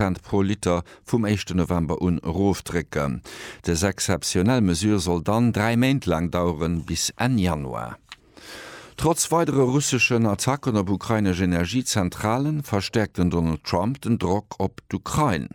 Cent pro Liter vum éischte November un erofdrécken. Des exzeptionell Mesure soll dann dräi Méint laang daueren, bis Enn Januar. Trotz weidere russeschen Attacken op ukrainesch Energiezentrale verstäerkt den Donald Trump den Drock op d'Ukrain.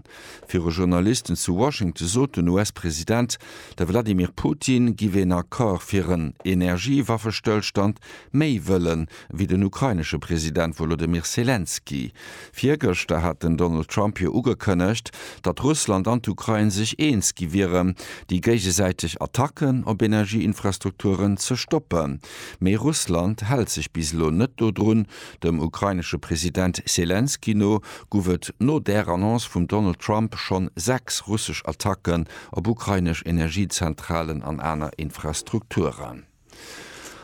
Viru Journalisten zu Washington sot den US-President, de Wladimir Putin giff een Accord fir en Energiewaffestëllstand méi wëllen, wéi den ukrainesche President Wolodymyr Selenskyj. Virgëschter hat den Donald Trump jo ugekënnegt, datt Russland an d'Ukrain sech eens gi wieren, déi géigesäiteg Attacken op Energieinfrastrukturen ze stoppen. Mee Russland hält sech bis elo net dodrun. Dem ukrainesche President Selenskyj no guff et no där Annonce vum Donald Trump schonn sechs russesch Attacken op ukrainesch Energiezentralen an aner Infrastrukturen.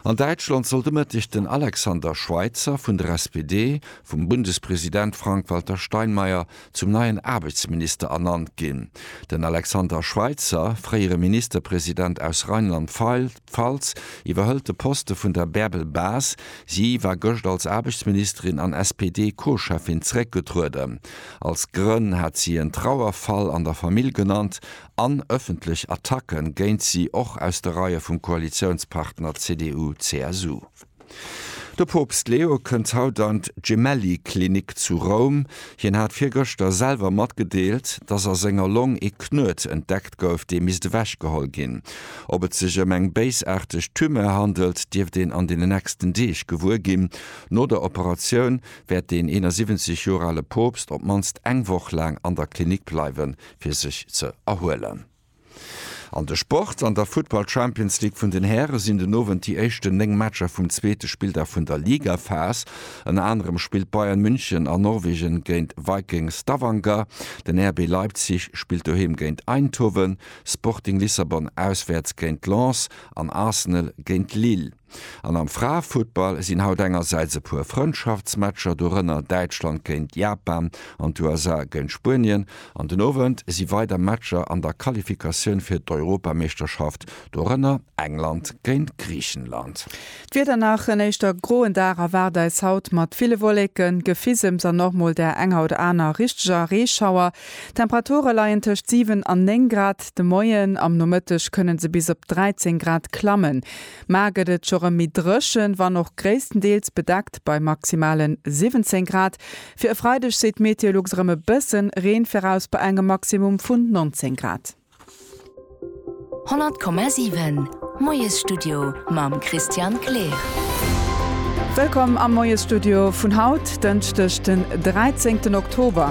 An Däitschland soll de Mëtteg den Alexander Schweitzer vun der SPD vum Bundespresident Frank-Walter Steinmeier zum neien Aarbechtsminister ernannt ginn. Den Alexander Schweitzer, fréiere Ministerpresident aus Rheinland-Pfalz, iwwerhëlt de Poste vun der Bärbel Bas. Si war gëscht als Aarbechtsministerin an SPD-Co-Cheffin zeréckgetrueden. Als Grënn hat si en Trauerfall an der Famill genannt an ëffentlech Attacke géint si och aus de Reie vum Koalitiounspartner CDU-CSU. De Poopst Leo kënnt haut an d'Gemelli-Klinik zu Roum. Hien hat virgëschter selwer matgedeelt, dass a senger Long ee Knuet entdeckt gouf, dee misst ewech geholl ginn. Ob et sech ëm eng béisaarteg Tumeur handelt, dierft een an den nächsten Deeg gewuer ginn. No der Operatioun wäert den 71 Joer ale Poopst op d'mannst eng Woch laang an der Klinik bleiwen, fir sech ze erhuelen. An de Sport, An der Futtball Champions League vun den Häre sinn den Owend déi éischten 9 Matcher vum zweete Spilldag vun der Ligaphas. Ënner anerem spillt Bayern München a Norwegen géint Viking Stavanger, den RB Leipzig spillt doheem géint Eindhoven, Sporting Lissabon auswäerts géint Lens an Arsenal géint Lille. An am Fraefuttball sinn haut engersäits e puer Frëndschaftsmatcher, dorënner Däitschland géint Japan an d'USA géint Spuenien. An den Owend si weider Matcher an der Qualifikatioun fir d'Europameeschterschaft, dorënner England géint Griichenland. D'Wieder, Nach en éischter groen Dag erwaart eis haut mat ville Wolleken, Gefisems an och mol der enger oder aner richteger Reeschauer. D'Temperature leien tëscht 7 an 9 Grad de Moien, am Nomëtteg kënne se bis op 13 Grad klammen. Mar gëtt et scho rem méi drëchen, wann och gréisstendeels bedeckt bei maximalen 17 Grad. Fir e Freideg seet Meteolux rem e bëssen Reen viraus bei engem Maximum vun 19 Grad. 100,7 Moiesstudio mam Christian Kleer. Wëllkomm am Moiesstudio vun haut, Dënschdeg den 13 Oktober.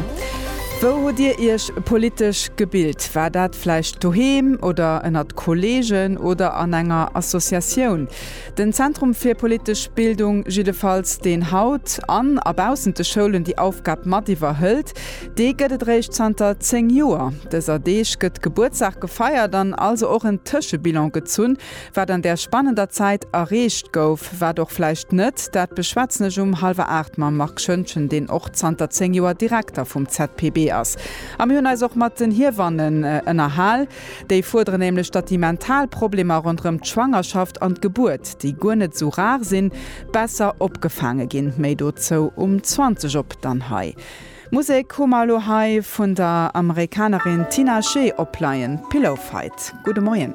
Wou hutt Dir Iech politesch gebilt? War dat vläicht doheem oder ënnert Kolleegen oder an enger Associatioun? Den Zentrum fir politesch Bildung jiddefalls, deen haut an a baussent de Schoulen déi Aufgab mat iwwerhëlt, dee gëtt et réischt zanter 10 Joer. Dëser Deeg gëtt Gebuertsdag gefeiert an also och en Tëschebilan gezunn, Wat an där spannender Zäit erreecht gouf, wat och vläicht net, dat beschwätzen ech um hallwer aacht mam Marc Schöntgen, deen och zanter zéng Joer Direkter vum ZPB ass. A mir hunn eis och mat den Hiewannen ënnerhal. Déi fuerderen nämlech, datt déi mental Problemer ronderëm d'Schwangerschaft an d'Gebuert, déi guer net esou rar sinn, besser opgefaange ginn. Méi dozou um 20 op. Dann hei Musek hu mer elo hei vun der Amerikanerin Tinashe opleien, Pillowfight. Gudde Moien.